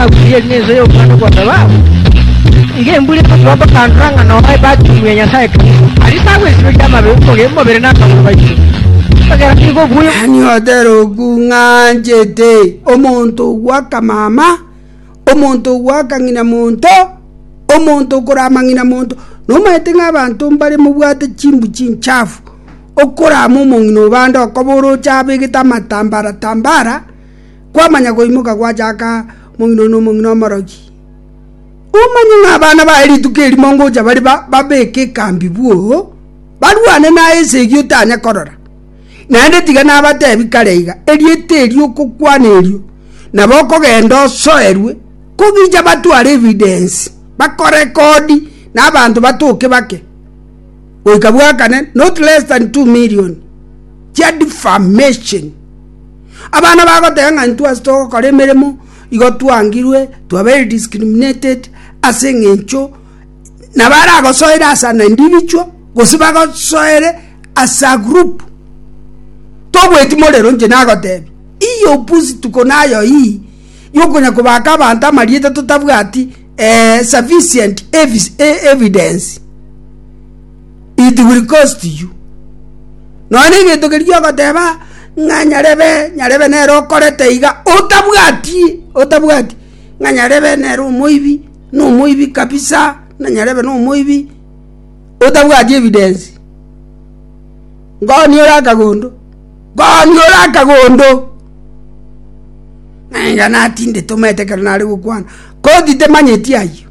Agurie eri nense y'obwano bwa thababu, nigo embura egotoa bakandora ng'a noe bakungu ya Nyasae Kristo. Aria tagwesiberia amabe omoge- omobere na amagoro baito, ekiagera nigo obuya Ani oteroku ng'anchete omonto bw'akamama, omonto bw'akang'ina monto, omonto okora amang'ina monto, nomanyete ng'a abanto mbare mobwate chimbu chinchafu, okorama omong'ina o bande okobora oche abegete amatambara tambara, Kwamanya goimoka gwachaka omong'ina one omong'ina omorogi, omanye ng'a abana baye rituko erimo ngocha bare babeke ekambi bwoo, barwane naye esegi otanya korora. Naende tiga nabatebi kare iga, erieta erio okokwana erio nabo okogenda osoerwe, kogicha batware evidence, bakorekodi na abanto batoke bake goika bwakane not less than two million chia defamation. Abana bagoteba ng'a intwe ase togokora emeremo igo twangirwe twabeire discriminated ase eng'encho nabaragosoere as an individual gose bagosoere as a group. Togweti morero inche nagotebi ii opusi tuko nayo ii yokonya kobaka abanto amarieta totabwati sufficient evidence. It will cost you. Nonya negento keria ogoteba ng'a nyarebe nyarebe nere okorete iga otabwati otabwati ng'a nyarebe nere omoibi na omoibi kabisa na nyarebe na omoibi otabwati evidence. Ngonia ore akagondo ngonia ore akagondo ng'a enga natindete omanyete ekero nare gokwana koti temanyeti ayio.